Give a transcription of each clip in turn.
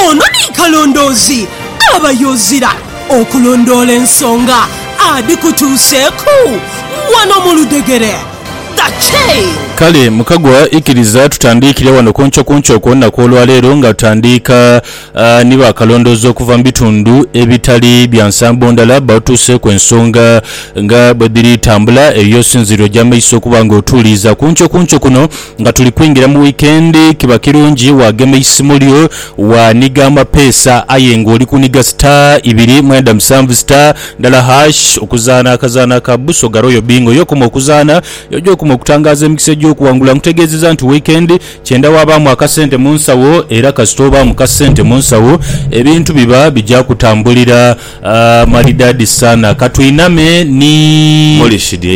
Ono ni kalondoozi aba yozira okulondoola ensonga adhikutuuseeku wano mu ludhegere. The Chain. Kale mukagwa ikiriza tutandiikire wano kuncokunco ku lunaku olwaleero nga tutandiika ni ba kalondoozi okuva mu bitundu ebitali bya nsambo ndala batuuseeku ensonga nga bwedhiri tambula eyo y'osinziire oja maiso okuba nga otuuliiza kuncokunco kuno Nga tuli kwingira mu wiikendi, kiba kirungi waagema eisimu lyo, waaniga amapeesa aye ng'oli kuniga star ibiri mwenda musanvu star ndala hash okuzaana akazaanho aka Busoga Royal Bingo. Y'okoma okuzaanha, y'oja okuma okutangaaza emikisa egy'okuwangula. Nkutegeezezza nti wiikendi kyenda waabaamu akasente mu nsawo era kasita obaamu ka sente mu nsawo ebintu biba bigya kutambulira malidaadi sana. Ka twiname ni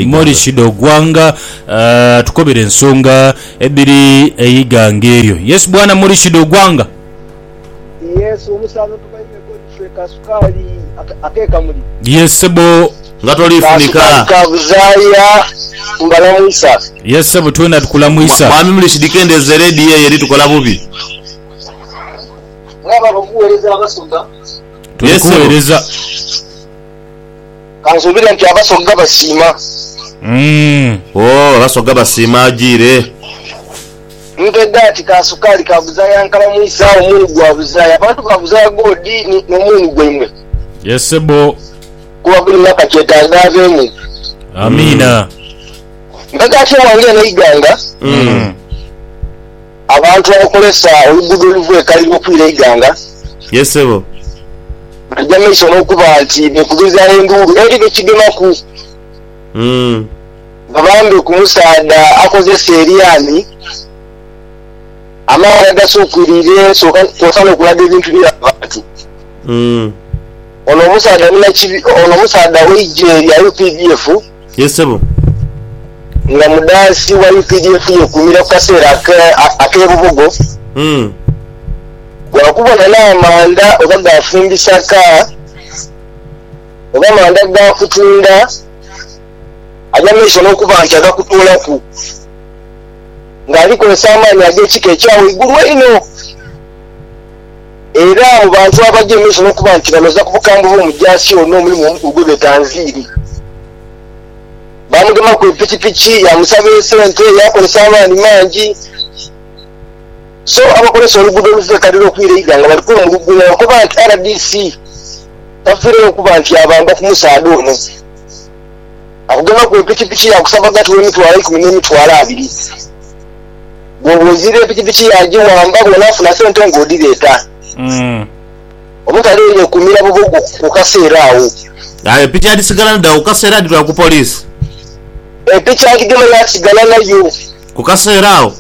Morishid Ogwanga. Tukobere ensonga edhiri eighanga eryo. Yesu bwana muli shida ogwanga. Yesu omusanhu tubaime ko ife ka sukaali akekamuli. Yes sebo nga tolifunika. Ka sukaali ka buzaaya mbalamwisa. Yes sebo twena tukulamwisa. Mwami muli shidi kendeza eredio eyo eri tukola bubi. Mwaba abakuwereza abasoga. Tuli kuwereza. Ka nsuubire nti Abasoga basiima. Oh, Abasoga basiima ajiire. Mpedha ati ka sukaali ka buzaaya nkalamwisa omuunu gwa buzaaya. Abantu ba buzaaya goodi ni, n'omuunu gwaimwe. Yes sebbo. Kuba buli mwaka kyetaaga aveemu. Amiina. Mpedha ati ewange eno eighanga. Abantu abakozesa oluguudo oluva e Kaliro okwira e Iganga, Yes ssebo. baja mu maiso n'okuba nti beekubiriza enduulu eri be kigemaku babambe ku musaadha akozesa eryanhi amaani agasuukwiriire kwosa n'okulaga ebintu bye yaba abantu. Ono omusaadha munakibi ono omusaadha w'eigye lya updf. Ye ssebo. Nga mudhaasi wa updf yeekuumira ku kaseera ak'e Bubugo, waakubona n'amanda oba ga fumbisa ka oba manda ga kutunda aja maiso n'okuba nti agakutoolaku ng'alikozesa amaani ag'ekika ekya waigulu einho. Era mu bantu abagya emaiso n'okuba nti banoza ku bukambwe bw'omujaasi ono omulimu omukulu gwe beeta nviiri, baamugemaku epikipiki, yaamusaba esente, yaakozesa amaani mangi. So abakozesa oluguudo oluva e Kalira okwira e Iganga bali kwemulugunya nga bwebakoba nti rdc tafiiregho okuba nti yaabamba ku musaadha ono akugemaku epikipiki yaakusabaga nti w'emitwalo eikumi n'emitwalo abiri. Bwoba ozira epikipiki yagiwamba bwonafuna sente nga odhireeta. Omutale oyo yekumira bubwo ku kaseera agho. Aye piki adhisigala nadho agho kukaseera adhitwala ku police? Epiki agigema yasigala nayo. Ku kaseera agho?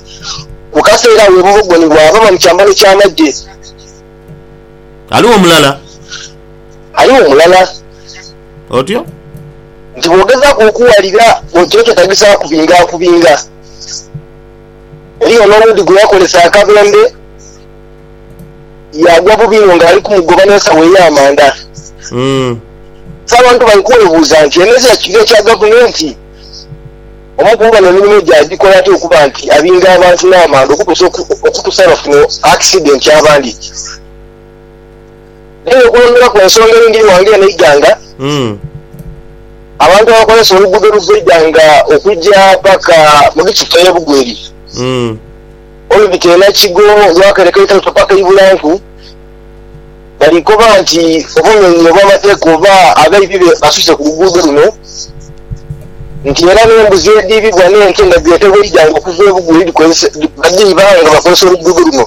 Ku kaseera agho bubwo gwo ni bwaba nga mu kyambalo kya magye. Ghaligho mulala? Ghaligho mulala. Otyo? Nti bwogezaaku okuwalira, otyo kyetagisaaku kubinga kubinga. Eriyo n'owundi gwe yakolesa akabembe yaagwa bubi inho ng'ali kumugoba n'ensawo ey'amanda. So abantu bali kwebuuza nti eno ezira kiviiri kya gavumenti? Omu ku bano emirimu gye agikola atya okuba nti abinga abantu n'amanda okutuusa bafuna akisidenti abandi? Aye okwongera ku ensonga eyindhi ghange eno eighanga, abantu abakozesa oluguudo oluva eighanga okugya paka mu district eye Bugweri olubita e Nakigo, olwakereka Italuto paka e Ibulanku bali koba nti obumenyi obwamateeka oba abaibi basuse ku luguudo luno nti era n'embuzi edhiibibwa n'ente nga dhiretebwa eighanga okuva e Bugweri badhiiba nga bakozesa oluguudo luno.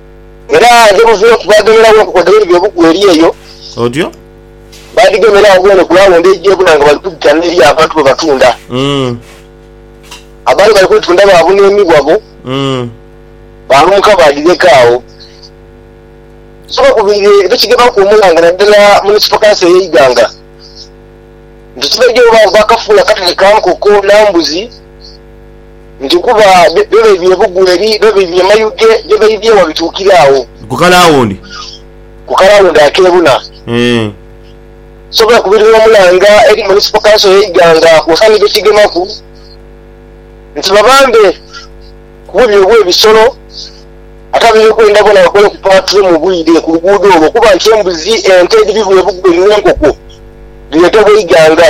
Era ghe buviire ku baaghemeragho enkoko edh'ebibi by'obuku eri eyo. Otyo. Baadhigemeragho bwone ku laawundi eidhi ebula nga bali kwidhita n'eri abantu be batunda. Abaali bali kwetunda baabuna emibwa bo, baalumuka baadhileka agho. So bakubiire bekigemaaku omulanga naddala munisipakansi eyo Iganga nti tibaidhi oba baakafuula katale ka nkoko na mbuzi. nti kuba byo baidhie ebugwe eri, byo baidhie emayuge, byo baidhie wa bituukira agho. Ku kalawundi. Ku kalawundi akeebuna. Sobola kubirira omulanga eri Municipal Council ye Iganga kwosanidha okigemaku nti babambe ku bubbi obwe bisolo ate abeby'okwerinda boona bakole ku paatulo mu bwire ku luguudo olwo okuba nti embuzi, ente edhibibwa ebugwe ni enkoko dhireetebwa Iganga.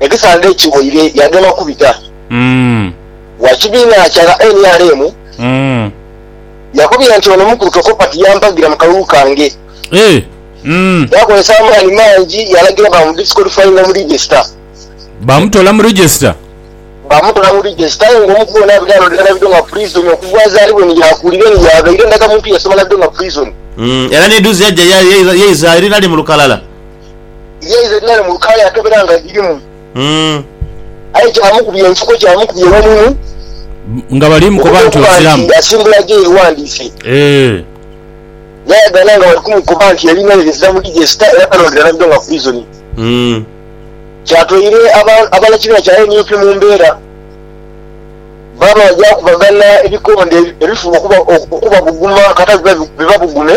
Ekisandhe ekiwoire yagema kubita wa kibiina kya ba nrm yakubye nti ono omukulu tokopa tiyampagira mu kalulu kange. Yakozesa amaani mangi yalagira bamudisqualifyinga mu register. Baamutola mu register? Baamutola mu register aye nga omukulu ono abadde alolera Nabidho nga prison okuva azaalibwe ni yaakulira ni yaabaire ndagamuntu yasoma Nabidho nga prison. Era n'edhuzi yaja yaiza eri nali mu lukalala. yaidha nale mu lukaaya akebera nga dhirimu. Aye gyamukubya enfuko, gyamukubya ewamumu okuba okuba nti asimbula gye yewandiise. Yayaganha nga bali kumukoba nti yalina ere ezira mu digesita era balondera nabyo nga poison. Kyatoire abanakibiina kya nup mu mbeera baaba bajakubagana ebikonde ebifuba okubabuguma kata bibabugume.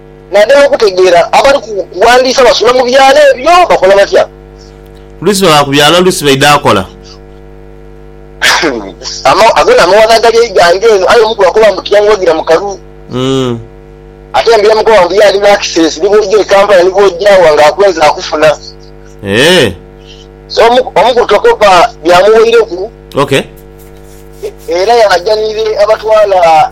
Nadala okutegeera, abali ku kuwandiisa basula mu byalo ebyo bakola batya? Oluusi baba ku byalo oluusi baidha akola. Ago n'amawano agali eiganga eno aye omu ku bakoba mbu tiyanguwagira mu kalulu. Ate mbu yamukoba mbu ye ali mu access ni bw'oja e Kampala ni bw'oja wa nga akwenze akufuna. So omu ku tokopa byamuweireku era yalajanire abatwala.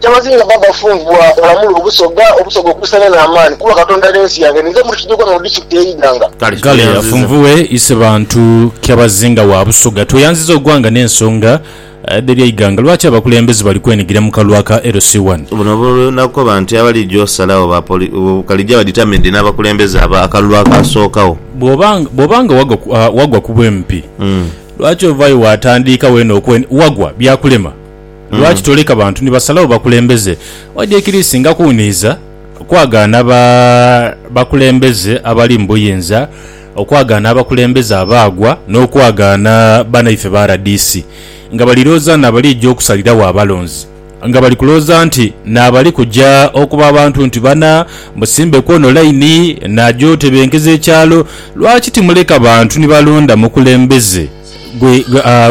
Ky'amazinga bba Bafunvwa olamule Obusoga, Obusoga okuusaane n'amaani kuba Katonda ali ensi yange ninze muli Kidyogwa mu Disitulikiti y'e Iganga. Kale Bafunvue ise bantu Kyabazinga wa Busoga tweyanziza ogwanga n'ensonga dh'ebya Iganga. Lwaki abakulembeze bali kwenigira mu kalwa ka LC one? Buno buli nakoba nti abalija osalagho ba Kalija ba determined n'abakulembeze aba akalulu akaasookagho. Bwoba bwoba nga wagwa ku wagwa ku bwempi lwaki ovaayo waatandiika weena okwe wagwa byakulema? Lwaki toleka bantu ni basalagho bakulembeze? Wadi ekiri singa kuwuniiza kwagaana ba bakulembeze abali mu buyinza, okwagaana abakulembeze abaagwa, n'okwagaana banaife ba rdc nga balirooza nti nabalija okusaliragho abalonzi, nga bali kulooza nti naabali kuja okuba abantu nti bana musimbe kwono laini naja otebenkeza ekyalo. Lwaki timuleka bantu ni balonda mukulembeze?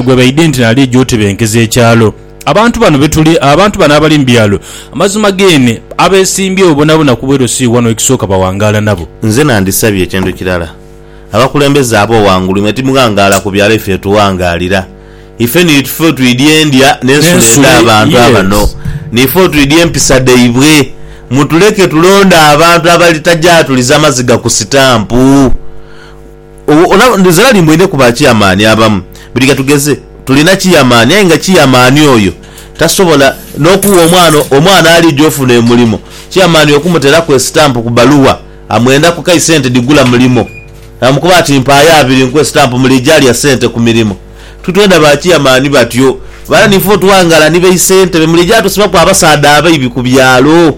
gwe baidhi nti nalija otebenkeza ekyalo. Abantu bano betuli abantu bano abali mu byalo amazima geene abesimbyewo bonabona ku bwerosi wano ekisooka bawangaala nabo. Nze nandisabye ekintu kirala abakulembeze abo wangulu mwe timughangaala ku byalo ife tughangaalira ife ni tufe otwidhi endya n'ensula edha bantu abano nife otwidhi empisa dhaibwe mutuleke tulonde abantu abalitaja atuliza maziga ku sitampu Zirali mbu eidheku ba kiyamaani abamu. Buli katugeze tulina kiyamaani aye nga kiyamaani oyo tasobola n'okugha omwana omwana ali gy'ofuna emulimo. Kiyamaani okumuteraku esitampu ku baluwa amwendaku kai sente dhigula mulimo. Amukoba ati mpaayo abiri nkuwe sitampu muli ija alya sente ku mirimo. Titwenda ba kiyamaani batyo. Bwala niife otwangala ni baisente be muli ija tusibaku abasaadha abaibi ku byalo.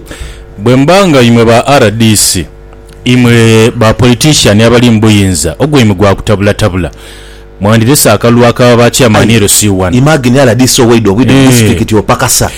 Bwe mba nga imwe ba rdc Imwe ba politician abali mu buyinza ogwaimwe gwa kutabulatabula, mwandilese akalulu aka ba chairman Aye LC wano. imagine rdc owaidha obwidha mu Eeh. disitulikiti opakasa.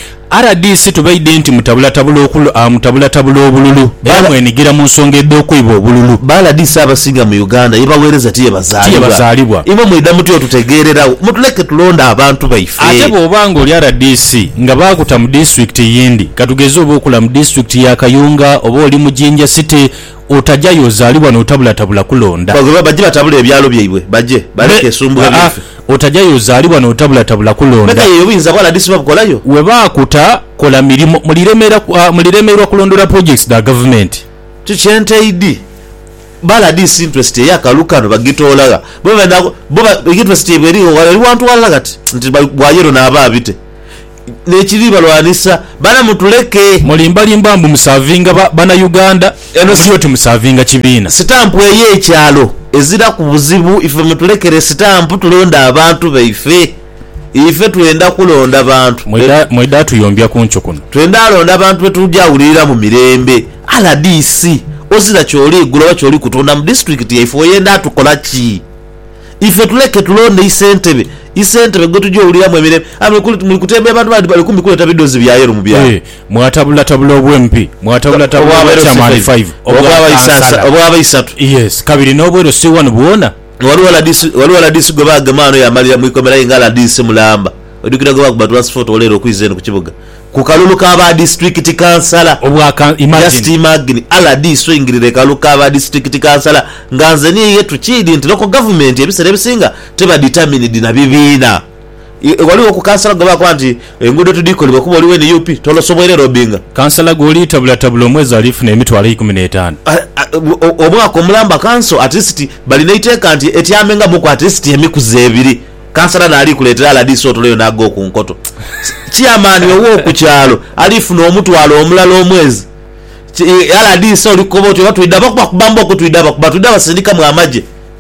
Rdc tubaidhe nti mutabulatabula okul a mutabulatabula obululu Ba era la. mwenigira mu nsonga edh'okwiba obululu. Ba rdc abasinga mu Uganda ye baweereza ti ye Ti ye bazaalibwa. bazaalibwa. Imwe mwidha mutya otutegeereragho? Mutuleke tulonde abantu baife. Ate bw'oba ng'oli rdc nga baakuta mu disitulikiti eyindi, katugeze oba okula mu disitulikiti ya Kayunga oba oli mu Jinja City, otajayo ozaali wano otabulatabula kulonda. Bagobe bajje batabule ebyalo byaibwe bajje baleke esumbuwa lyaife. Otajayo ozaali wano otabulatabula kulonda. Begaye obuyinza bwa rdc babukolayo. Webaakuta kola mirimo, muliremerwa kulondoola projects dha gavumenti. Kyo kye ntaidhi. Bala dhisi interest eya kalu kano bagitoola gha? Bo benda bo ba interest yaibwe erigho gha? Eri wantu walala kati nti bwa yellow naaba abite nekiri balwanisa bana mutuleke. Mulimba limba mbu musavinga ba bana Uganda Eno muli oti musavinga kibiina. Sitampu eye kyalo eziraku buzibu ife mutulekere sitampu tulonde abantu baife. Ife twenda kulonda bantu be. Mwidha tuyombya kunkyo kuno. Twenda londa bantu be tuja wulirira mu mirembe. Rdc, ozira kyoli gula oba kyoli kutunda mu disitulikiti yaife oyenda tukola ki? Ife tuleke tulonde isentebe, isentebe gwe tuja owuliramu emirembe. Aye muli kutemya bantu bandi bali kumpi kuleta bidhozi bya yelo mu byalo. Mwatabulatabula obwe MP, mwatabulatabula obwa chairman five, obwa kansala, obwa baisatu. Yes, kabiri n'obwero C1 bwona. Ghaligho rdc ghaligho rdc gwe baagema ghano yaamalira mu ikomera aye nga rdc mulamba. Oidhukira gwe baakuba transphoto ghaleero okwiza eno ku kibuga ku kalulu ka ba disiturikiti kansala? Just imagine rdc oingirira ekalulu ka ba disiturikiti kansala nga nze ni iye tukiidhi nti local government ebisera ebisinga teba determined na bibiina. Ghaligho ku kansala gwe bakoba nti enguudo tidhikolebwa kuba oli wa nup tolosobwoire lobinga. Kansala gw'oliitabulatabula omwezi aliifuna emitwalo eikumi n'etaanu. Omwaka omulamba kanso atilisiti bali n'eiteeka nti etyamengamuku atilisiti emikuzi ebiri. Kansala n'ali kuleetera rdc otulo yona ag'oku nkoto. Ciyamaani ow'oku kyalo aliifuna omutwalo omulala omwezi. Rdc oli kukoba oti oba twidaba kubakuba mbooku twidaba kuba twidaba sindikamu amagye.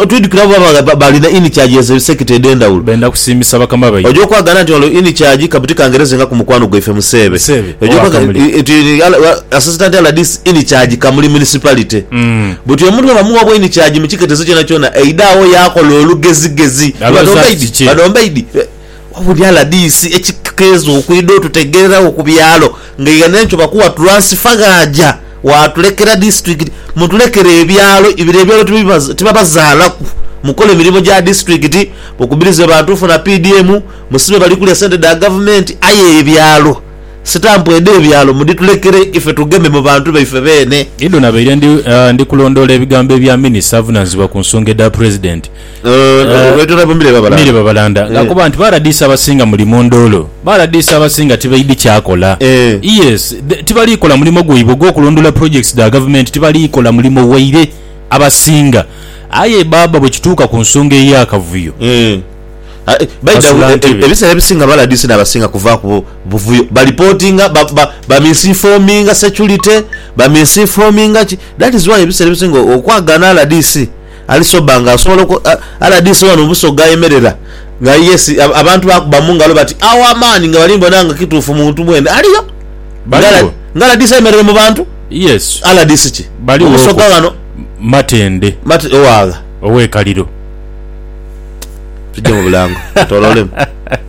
Otwidhukira abo baba baali na ini kyagi ezo sekita edh'endhawulo. Benda kusiimisa bakama baibwe. Oja okwagaana nti ghano ini kyagi ka buti kangerezenga ku mukwano gwaife Museebe. Museebe oba Kamuli. Asisita nti rdc ini kyagi Kamuli Municipality. Buti omuntu bwaba mugha bwa ini kyagi mu kiketezo kyonakyona, aidha agho yaakola olugezigezi. Bano mbaidhi? Bano mbaidhi? Wabula rdc ekikeeza okwidha otutegeeragho ku byalo ng'eighano entyo bakuwa tulansifa ghaaja waatulekera disitulikiti. Mutulekere ebyalo, biro ebyalo tibabazaalaku, mukole mirimo gya disitulikiti, mukubirize bantu funa PDM, musibe bali kulya sente dha gavumenti aye ebyalo, sitampu edh'ebyalo mudhitulekere ife tugeme mu bantu baife beene. Ido nabaire ndi kulondoola ebigambo ebya minisita avunaanyizibwa ku nsonga edha Pulezidenti, Baitwala bo mire babalanda. Mire babalanda. Ng'akoba nti, Paradiso abasinga muli mu nduulu. Paradiso abasinga tibaidhi kyakola. Yes, tibali kola mulimo gwaibwe ogw'okulondoola projects dha gavumenti, tibali kola mulimo waire abasinga. Aye baaba bwe kituuka ku nsonga ey'akavuyo, basula ntebe. Ebiseera ebisinga Paradiso n'abasinga kuvaaku buvuyo. Balipootinga, bamisinfoominga securite, bamisinfoominga ki. That is why ebiseera ebisinga okwagaana rdc. Ali sober nga asobola oku rdc wano mu Busoga ayemerera nga ali yes abantu bakuba mungalo bati our man nga bali bona nga kituufu muntu mwene aliyo nga rdc ayemerere mu bantu yes rdc ki mu Busoga wano Matende Mate owagha owe kaliro. Tujje mu bulango twetololemu.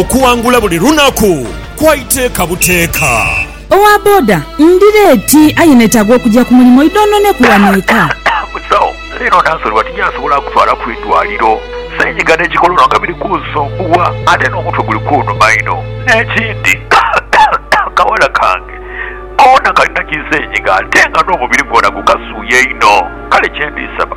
Okuwangula buli lunaku kwa iteeka buteeka. Owa boda, Ndi leeti aye netaaga okugya ku mulimu idhonhoneku wano eka. Musawo, Leero nansonyiwa tinjansobola kutwala ku idwaliro. Senyiga ne kikolono nga biri kunsumbuwa ate n'omutwe guli kunuma inho. N'ekindi kawala kange koona kalina kisenyiga ate nga n'omubiri gwona gukasuuya inho. Kale kyendisaba.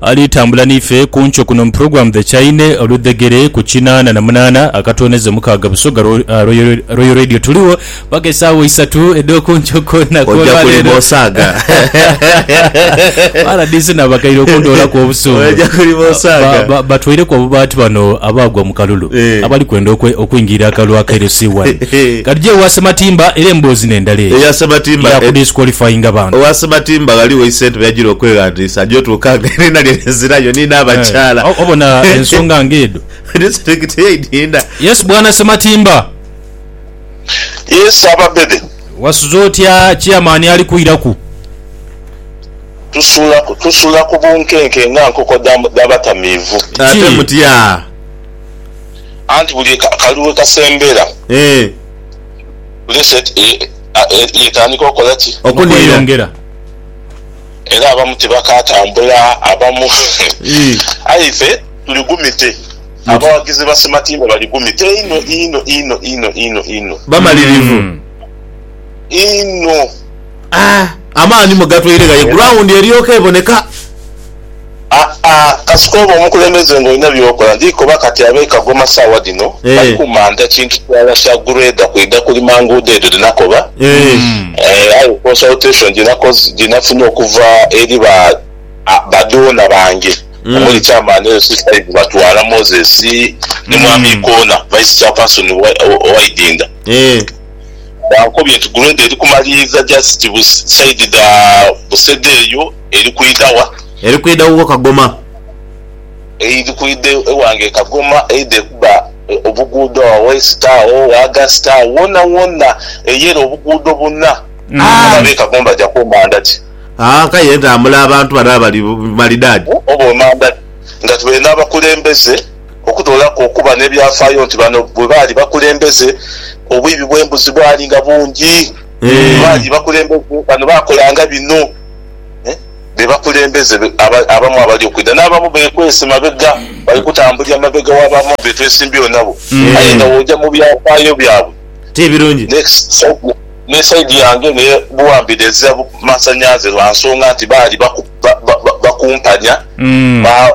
Ali tambula n'ife ku nkyo kuno mu puroguramu The Chaine, oludhegere ku kinaana na munaana akatooneza omukaaga Busoga Royal Radio. Tuligho paka esaawa isatu edh'oku nkyo ku lunaku Oja olwa kulima leero. osaaga. Ba RDC nabakaire okundoolaku obusungu. Oja kulima osaaga. Ba- ba- Batweireku obubaati bano abaagwa mu kalulu Eh. abali kwenda okwe- okwingirira akalulu aka LC1. Katugye ewa Ssematimba era emboozi n'endala eyo Eya Ssematimba, ya eh, kudisqualifyinga bantu. owa Ssematimba ghaligho isentebe yajira okweghandiisa Saja otuukanga eriina lye lizirayo ni n'abakyala. Eh, obona ensonga nga edho. Disitulikiti ye Idinda. Yes bwana Ssematimba. Yes Ssababede. Wasuze otya Chairman ali kwiraku? Tusula tusula ku bunkenke nga nkoko dha batamiivu. Ate mutya? Anti buli kali we kasembera. Eh. Reset yetandika okola ki? Okweyongera. Era abamu tibakaatambula, abamu. Aye ife tuli gumite. Abawagizi ba Sematimba bali gumite inho, inho, inho, inho, inho, inho. Bamalirivu. Inho. Amaani mwe gatwaire ghaigulu, awundi eryoke eboneka. Aa, kasita oba omukulembeze nga olina by'okola. Ndi koba kati ab'e Kagoma saagha dhino bali kumanta kintu kirala kya grader kwidha kulima nguudo edho dhe nakoba. Ee, aye consultation gye nakoze, gye nafunye okuva eri ba, ba donor bange omuli Chairman eyo Sister Eve Batwala, Moses, ni Mwami Ikoona, Vice Chairperson wa, wa Idinda, bankobye nti grader eri kumaliiriza just bu side dha Busega eyo. Eri kwidha wa? Eri kwidha wuwo Kagoma. Eidhi kwidha ewange Kagoma, eidhe kuba obuguudo agho West agho, August agho, wona wona eyere obuguudo buna. Abaana be Kagoma baja ku manda ki? Haa kale ye ntambula abantu bano abali malidaadi. Oba emanda ki? Nga tubaire n'abakulembeze okutoolaku okuba n'ebyafaayo nti bano bwe baali bakulembeze obwibi bw'embuzi bwali nga bungi. Bwe baali bakulembeze bano baakolanga bino. be bakulembeze abamu abali okwidha. N'abamu beekwese mabega, bali kutambulira mabega w'abamu be twesimbyewo nabo. Aye nga bw'oja mu byafaayo byabwe, ni sayidi yange ni Buwambi dhezira masanhalaze lwa nsonga nti baali bakumpanya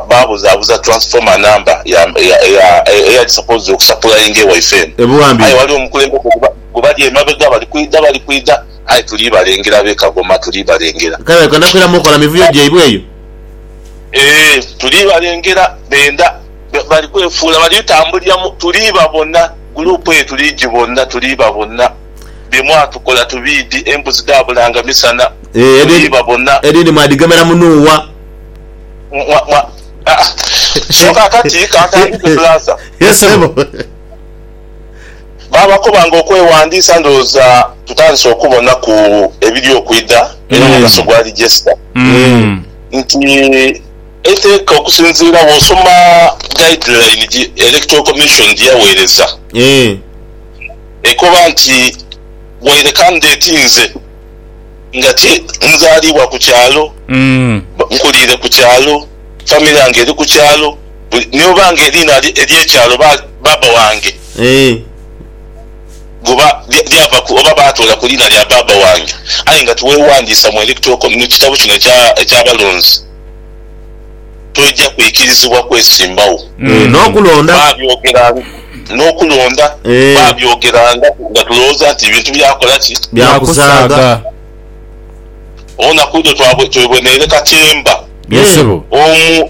baabuzaabuza transformer number eyali supposed okusapulayinga ewaife eno. Aye waliwo omukulembeze gwe bali emabega bali kwidha, bali kwidha. Aye tuli balengera b'e Kagoma, tuli balengera. Kale leka nakwiramu okola mivuyo gyaibwe eyo. Ee, tuli balengera. Benda, bali kwefuula, bali tambulira mu. Tuli babona. Guruupu eyo tuli gibona, tuli babona. Bye mwatukola tubiidhi, embuzi dhaabulanga misana. Ee, edhindi, edhindi mwadhigemera mu nuuwa. Mwa, mwa, ah, so kakati kantandike, Bulaza. Yes, ssebo. Baabakoba nga okwewandiisa ndowooza tutandise okubonaku ebiri okwidha era omugaso gwali jesita nti eiteeka okusinziira wosoma guideline gi Electoral Commission gyeyaweereza ekoba nti waire candidate nze nga ti nzaliibwa ku kyalo, nkuliire ku kyalo, family yange eri ku kyalo, Buli ni oba nga eriina lye ery'ekyalo ba, baaba wange, Eeh. guba, lya, lyava ku, oba baatoola ku liina lya baaba wange, aye nga tiweewandiisa mu electoral co, mu kitabo kino ekya, eky'abalonzi, toija kwikirizibwa kwesimbagho. Eeh, n'okulonda. Baabyogeranga, n'okulonda, Eeh. baabyogeranga nga tulowooza nti bintu bya kola ki? Bya kusaaga. Byakusaaga. Owonaku idho twabwe, tweboneire katemba. Ye Eeh. sebo. Omu.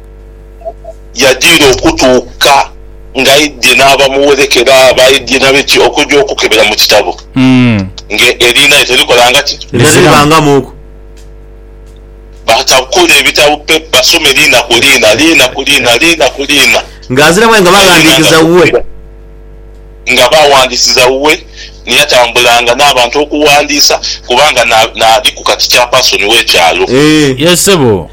yajiira okutuuka ng'aidhie n'abamuwereeka era baidhie na biki okuja okukebera mu kitabo nga eriina lye terikolanga ki? Teriribangamuuku. Batabukule ebitabo pe basome liina ku liina, liina ku liina, liina ku liina. Ng'azira mwe nga baghandiikiza wuwe. Nga baghandiisiza wuwe, ni yatambulanga n'abantu okughandiisa kubanga naaliku kati chapaasoni w'ekyalo. Eeh. Yee ssebo.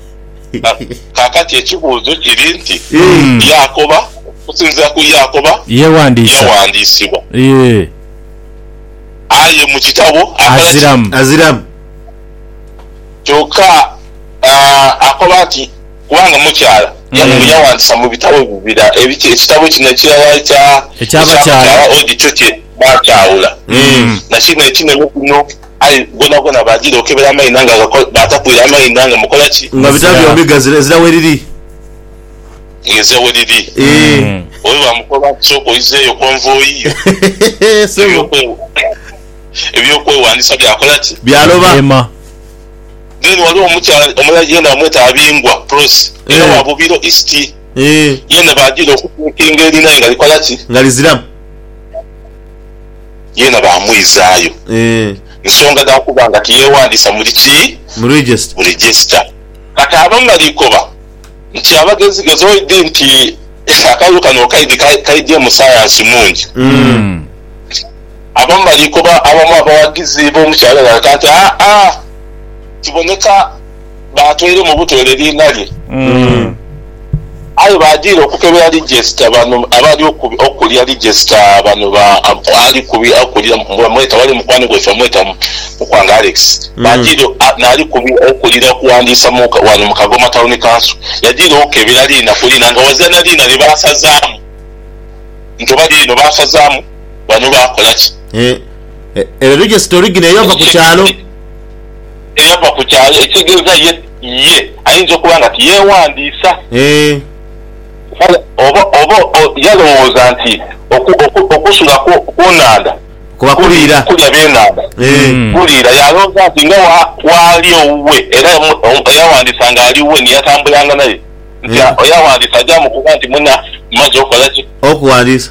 Na kaakati ekibuuzo kiri nti, Yaakoba, okusinziira ku Yaakoba, Yeewandiisa. yaghandiisibwa? Yee. Aye mu kitabo akola ki? Aziramu. Aziramu. Kyokka akoba nti, Kubanga mukyala. Yagho yaghandiisa mu bitabo ebyo bira, ebiki, ekitabo kino ekirala ekya, Eky'abakyala. eky'abakyala, odi kyo kye baakyawula, na kino ekinene kuno. Aye ghonaghoona baagira okebera amaina nga agakola, baatakwira amaina nga mukola ki? Nga bita Ng'ezira. byombi ghazira, ezira weriri. Ng'ezira weriri. Eeh. Oyo baamukoba nti, Sooka oizeeyo konvoyi yo. Ssebo. Eby'okwe, eby'okwewandiisa byakola ki? Byaloba. Byeema. Then waliwo omukyala omulala yeena bamweta Abingwa, Prossy, era wa Eeh. Bubiro East. Eeh. Yeena baagira okubuukinga erinaye nga likola ki? Nga liziramu. yeena baamwizaayo nsonga dha kuba nga tiyeewandiisa muli ki? Mu regisita. Kati abamalaikoba nti abagezigezi oidhi nti akalulu kano okaidhi kaidyemu sayansi mungi. Abamalaikoba abamu abawagizi b'omukyala ono balaga nti, Aa, kiboneka. baatweire mu butoole liina lye. Aye baadhira okukebera lijesita bano abali okulya lijesita bano ba ali kubi okulira bamweta ghali mukwano gwaife bamweta Mukwanga Alex baadhira naali kubi okulira okuwandiisa mu wano mu Kagoma Town Council yadhira okukebera liina ku liina nga ghazira na liina lye baasazaamu nti oba liino baasazaamu bano baakola ki. Ere lijesita original eyava ku kyalo. eyava ku kyaalo, ekitegeeza ye, ye ayinza okuba nga tiyeewandiisa. Eeh. Kale oba, oba o, yalowooza nti oku, oku, okusula ku, ku nhandha Kuba kuli kuliira. kulya byenhandha. Eeh. Mm. Kuliira. Yalowooza nti nga wa, waali owuwe, era omu, omu eyawandiisa nga ali wuwe ni yatambulanga naye, nti a, Eeh. eyawandiisa aja amukoba nti, Muna, mmaze okola ki? Okuwandiisa.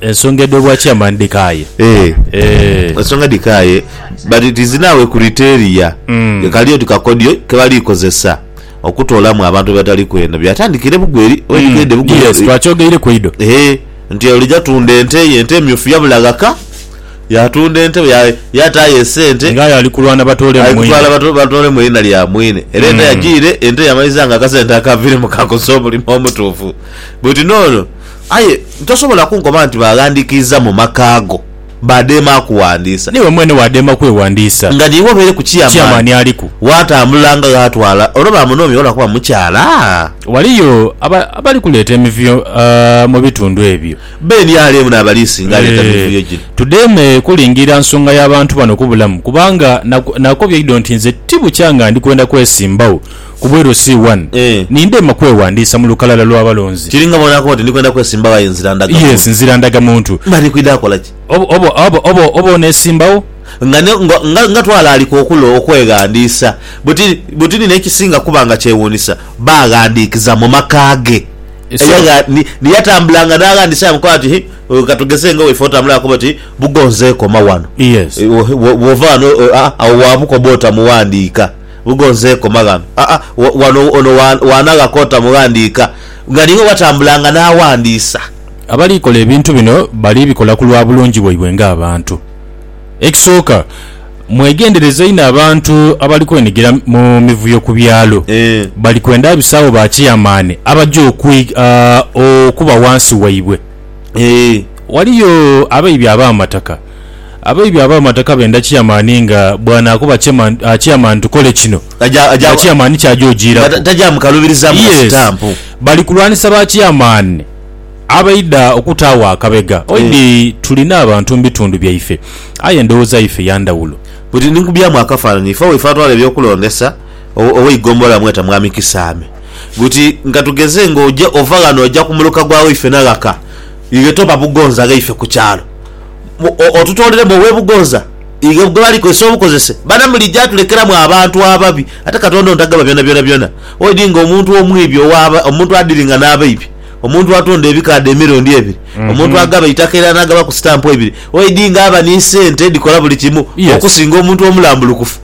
Ensonga edho bwa chairman dhikaaye. Eh. Eh. Ensonga dhikaaye but it is now a criteria mm. kali oti kakodyo kebali kozesa okutoolamu abantu abatali kweno byatandikire bugu eri mm. bugu yes twakyogeire ku ido eh nti olija tunda ente ye ente emyufu yabula ghaka yatunda ente yataayo esente ngaye ali kulwana batoole mwirina lya mwine era ente mm. yagiire ente yamaliza nga akasente akavire mu kakosa omulimu omutuufu But no no aye tosobola kunkoba nti baghandikiiza mu maka go badheema akuwandiisa. Niiwe mwene wadheema kwewandiisa. Nga niiwe obeere ku chairman Chairman aliku. watambula nga ghatwala olwo bamunoomye olwa kuba mukyala? Waliyo aba abali kuleeta emivuyo aah mu bitundu ebyo. Be nrm n'abaliisinga aleeta Eeh. mivuyo gino. Tudheeme kulingirira nsonga ya bantu bano kubulamu kubanga na nakobye ido nti nze tibukya nga ndi kwenda kwesimbawo. Ku bw'elyo si wani ni ndema kweghandiisa mu lukalala lwa balonzi. Kiri nga bw'onakoba oti, Ndi kwenda kwesimbawo aye nzira ndaga muntu. Yes, nzira ndaga muntu. Mba ndi kwidha kola ki? Oba, oba, oba, oba, oba oneesimbawo? Nga, nga, nga, nga twalaalika okulo okweghandiisa! Buti, buti ni n'ekisinga kuba nga kyewuunisa, baaghandiikiza mu maka ge. Eyagha, ni, ni yatambulanga n'aghandiisa aye amukoba ati, Hi, ka tugeze nga waife otambula akoba oti, Bugonze koma wano. Yes. Bw'ova ghano, a, agho waabukoba oti amuwandiika. Bugonze koma ghano. Aa, wa, wano, ono wa, waanagha kota mughandiika. Nga niiwe watambulanga n'aghandiisa. Abali kola ebintu bino bali bikola ku lwa bulungi bwaibwe ng'abantu. Ekisooka, mwegendereze inho abantu abali kwenhigira mu mivuyo ku byalo. Eeh. Bali kwenda abisawo ba kiyamaani abaja okwi, a, okuba ghansi waibwe. Eeh. Ghaliyo abaibye ab'amataka. Abaibi ab'amataka benda Kiamani nga bw'anaakuba Kiamani tukole kino nga Kiamani ky'aja ojiiraku. Yes. Bali kulwanisa ba Kiamani abaidha okutaagho akabega. Oidhi tuli n'abantu mu bitundu byaife aye endowooza yaife ya ndhawulo. Bwedhiri ni nkubyaamu akafaananyi, ife waife atwala eby'okulondesa ow'eigombolola amweta Mwami Kisaame buti, Nga tugeze nga oja ova ghano oja ku muluka gwa waife na ghaka, iwe toba bugonza ghaife ku kyalo. otutoleremu owe Bugooza ghe bali kozesa obukozese bana muli ja tulekeramu abantu ababi ate Katonda ontagaba byona byona byona oidi nga omuntu omwibi owa omuntu adiringa na baibi omuntu atonda ebikaadho emirundi ebiri omuntu agaba eitaka era nagabaku sitampu eibiri oidi nga aba ni sente edikola buli kimu okusinga omuntu omulambulukufu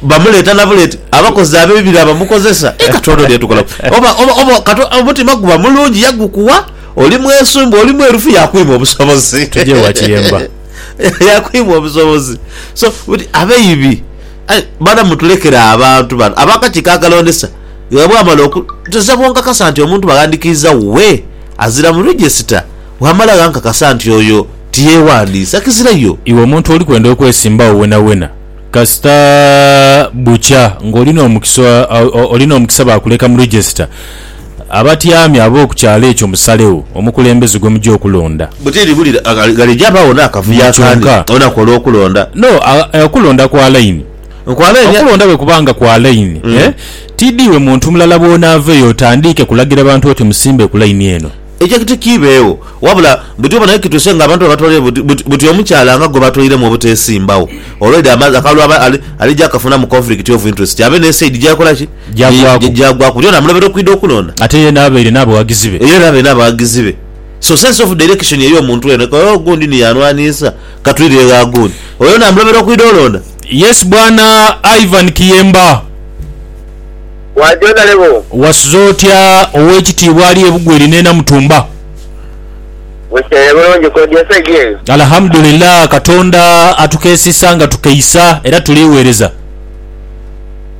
bamuleta na buleti abakozi abebibi na bamukozesa. Katonda oli yatukolaku oba oba oba omutima guba mulungi yagukuwa. Oli mwesumbu, oli mwerufu yakwima obusobozi. Tujje ewa Kiyemba. Yakwima obusobozi. So, buti abeibi. Aye bana mutulekere abantu bano abakakiiko akalondesa nga bwamala oku nze bwonkakasa nti omuntu baghandikiiza wuwe azira mu register wamala ghankakasa nti oyo tiyewandiisa kizira yo. Iwe omuntu oli kwenda okwesimbawo wenawena kasita bukya nga oli nomukisa oli nomukisa bakuleka mu register. Abatyami ab'oku kyalo ekyo musalegho omukulembeze gwe muja okulonda. Bwe tiri buli ghalija baagho n'akavuyo akandi olunaku olw'okulonda. No, okulonda kwa laini. Kwa laini? Okulonda bwe kuba nga kwa laini, tiidhiwe muntu mulala bw'onaaveyo otandiike kulagira bantu oti musimbe ku laini eno. Ekyo kiti kiibeegho. Wabula buti obona ye kituuse ng'abantu babatwalire buti buti omukyala nga gwe batwairiremu obuteesimbagho. Already akalulu alija akafunamu conflict of interest abe n'esaidi gy'akola ki? gyagwaku. Gyagwaku lyona amulobera okwidha okulonda. Ate yena abaire n'abaghagizi be. Yena abaire n'abaghagizi be. So sense of direction ey'omuntu eno eka, oh gundi ni yanwanhisa, ka twidhire gha gundi. Oyo yena amulobera okwidha olonda. Yes bwana Ivan Kiyemba. Bwa Jonale boo. Wasuze otya ow'ekitiibwa ali e Bugweri n'e Namutumba? Bukeire bulungi kodi esaidi eyo? Alhamudulillah Katonda atukeesisa nga tukeisa era tuligheereza.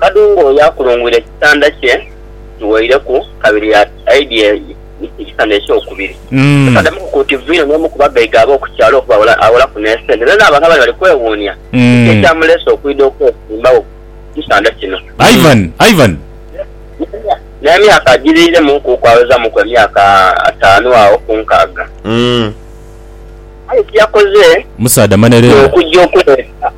Kadungu oyo akulungwire ekitanda kye kiweireku kabiri aidye ekitanda ekyokubiri. Totaddemuku ku nti Vino n'omu ku bagaiga ab'oku kyalo okuba awolaku n'esente. Era n'abantu abandi bali kwewuunia kiki ekyamuleese okwidha okwesimbawo ku kitanda kino. Ivan, N'emyaka agiriiremuku okwawezaamuku emyaka ataanu agho ku nkaaga. Aye kye yakoze kwe kujja okuleeta.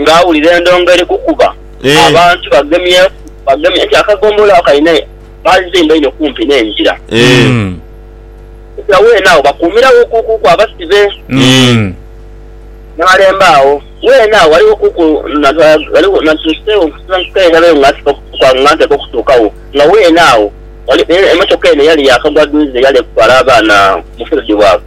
nga awulira endongo eri kukuba abantu bagemyeku bagemye nti akagombolola ako kalina baazimba inho kumpi n'engira okubitira weene agho bakuumiragho kuku abasibe n'alemba agho weene agho ghaligho kuku ghaligho natuuseegho okusensukayo ndabeyo nga nsiba nga nteekwa okutuukagho nga weene agho emotoka eno eyali yaakagwa dhuuze eyali eri kutwala abaana mu field work.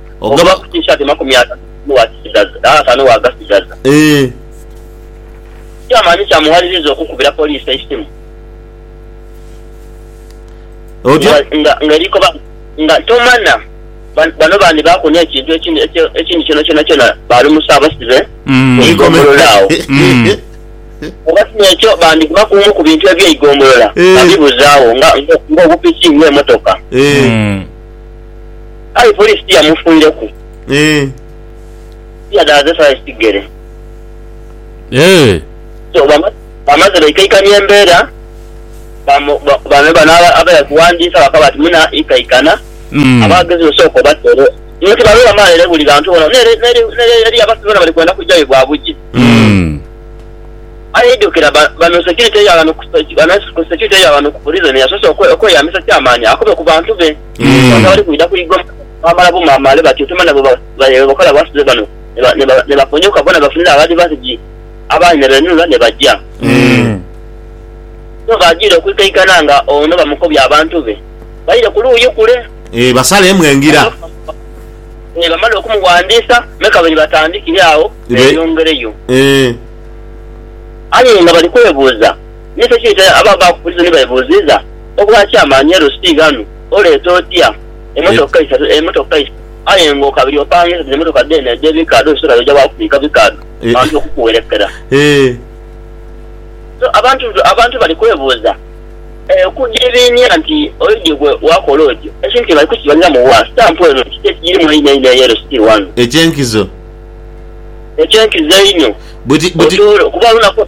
Ogaba ku T-shirt makumi atatu ni wakisigaza era atano wagasigaza. Eeh. Kyamanyi kyamuwaliriza okukubira poliisi eisimu Otya? nga nga eriiko ba nga tomana ba bano bandibaaku n'ekintu ekindi ekye ekindi kyona kyona kyona baalumusa abasibe mu Eikome. igombolola agho. Oba si n'ekyo bandigema ku bumu ku bintu eby'eigombolola Eeh. babibuze agho nga nga obupiki nga emotoka. Eeh. Kale poliisi tiyamufuireku Eeh. tiyadaaze saisi kigere. Eeh. So bama bamaze baikaikania embeera bamu ba bano bano aba abaidha kuwandiisa bakaba bati muna ikaikana Mm. abaagezi osooke obatere nio tibalwo bamala ere buli ghantu ghona nere neri neri eriyo abasibe bona bali kwenda kujayo bwa bugi. Mm. Aye idhukira ba bano security ya ghano ku bano ku security ya ghano ku prison yasoose okwe okweyambisa kyamaani akobe ku bantu be. Mm. Ono ali kwidha ku Igoma baamala bumaamaale bati otema nabo ba- baye bwe bakola abasibe bano ne ba- ne ba- ne baponyoka bona bafunire abali basigi abandi ne beenunula ne baja. Mm. So baajiire okwikaikana nga ono bamukobya abantu be baire ku luuyi kule Eh, basaleemu engira. ne bamala okumuwandiisa me kabiri batandikire agho Be- beeyongereyo. Eh. Aye nga bali kwebuuza Nikyo ki nti abo abaakubuuliza ni beebuuziiza, Obwa kyamaani e Lusi ghanu oleeta otya emotoka isatu, emotoka isatu, aye ng'okabiri opangiza dhino emotoka dheene edh'ebikaadho osobola oja wa kubiika bikaadho bantu okukuwerekera? So abantu abantu bali kwebuuza okudiibiinia nti oidhi gwe waakola otyo. Ekintu kino bali kukibaliramu wa? Sitampu eno kiki ekigirimu einho einho eyo e Lusi ghanu? Eky'enkizo. Eky'enkizo einho. Buti, buti. Otoole, kuba olunaku.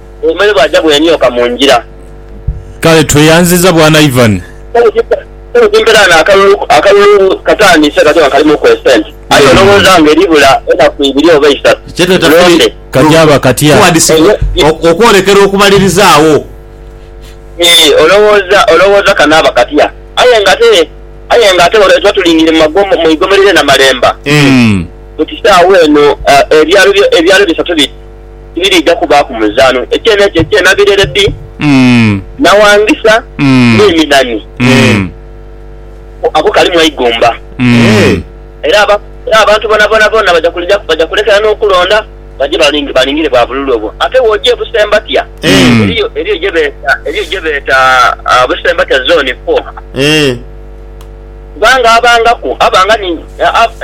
Obumere bwaja bwemyoka mu ngira. Kale tweyanziza bwana Ivan. Kale kimperane akalulu akalulu katandise kati nga kalimu ku esente aye olowooza nga eribula enaku ibiri oba eisatu tulonde. Kajaaba katya? Okwolekera okubaliriza agho. Eeh olowooza olowooza kanaaba katya? Aye nga ate aye nga ate tuba tulingire mu igomero lye Namalemba. Mu kisaawe eno ebyalo ebyalo bisatu bi. tibiriidha kubaaku muzaano. Eky'eno ekyo eky'ena birere bi nawangisa n'eminani ako kalimu eigumba. Era abantu bonabona bona baja kulekera n'okulonda baje balingire bwa bululu obwo. Ate bw'oja e Busembatia, eriyo gye beeta Busembatia Zone Four. Kubanga abangaku abanga ni,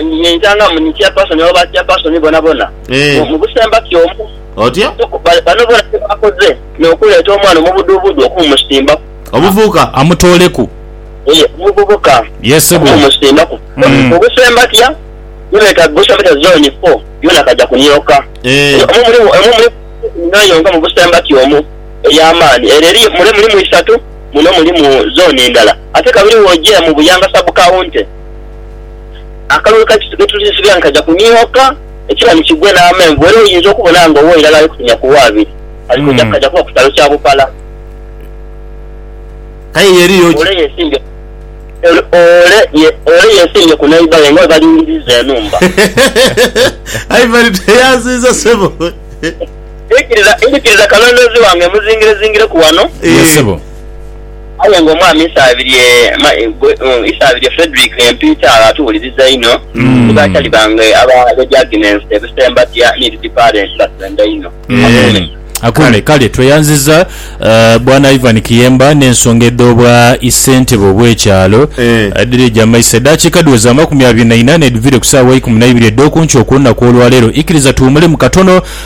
ni yentangamu ni chairperson oba ba chairperson bonabona mu, mu busembaki omu. Otya? So, ba, bano bona kye bakoze n'okuleeta omwana omubuduubudu okumusimbaku. Omuvubuka. Amutooleku. Yee, omuvubuka. Yee, ssebo. Okumusimbaku. Mm. Mu busembatya, gye beeta Busembatya Zooni Fo, yoona kaja kunyoka. Eeh. Omwo mulimu, omwo mulimu ensonga yonka mu busembatya omwo ey'amaani. Ere eriyo, mule mulimu isatu, muno mulimu zooni ndala. Ate kabiri bw'oja mu Buyanga Sub-County, akalulu ka Kisuga etulisibira nikaja kunihoka ekibani kigwe n'amenvu era oyinza okubona nga owa irala ali kutumya ku w'abiri ali kwija kukaja kuba ku kyalo kya Bupala. Ole yesimbye ku neighbour we nga bwe balingiriza enhumba. Ndhikiriza kalondoozi wange muzingirezingireku wano. Aye nga omwami Isabirye Isabirye Fredrick Empiita agha tuwuliriza inho, ni ba chali bange aba Lady Agnes e Busembatia ni Lady Parent batwenda inho. Akuume. Akuume. Kale tweyanziza Bwana Ivan Kiyemba n'ensonga edho bwa Isentebe obw'ekyalo. Dhiri dha maiso edaakiika dhiweze amakumi abiri na ina n'edhivire ku saawa eikumi na ibiri edh'okunkyo okw'olunaku olwaleero. Ikiriza tuwumulemu katono.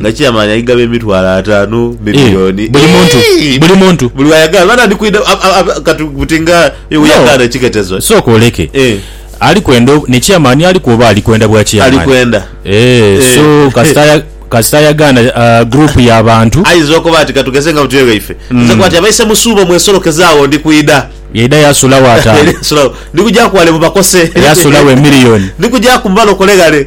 nga chairman aigaba emitwalo atanu Eh, milioni buli muntu Eeii! buli muntu buli wayagala bana ndi kwidha ab- ab- ab- kati buti nga iwe No. yagana ekiketezo sooka oleke Eh. ali kwenda o- ne chairman aliku oba ali kwenda bwa chairman ali kwenda Eh, Eh. so kasita aya- kasita ayagaana ah, group ya bantu ayiza okuba ati katugeze nga butyo ewe ife Mm. nze kwati abaise musuubo mwesolokeze awo ndi kwidha yaida yasulawo ataano Eri esulawo. ndi kuja kwale mubakose Yasulawo emillion. ndi kuja kumubala okoleghale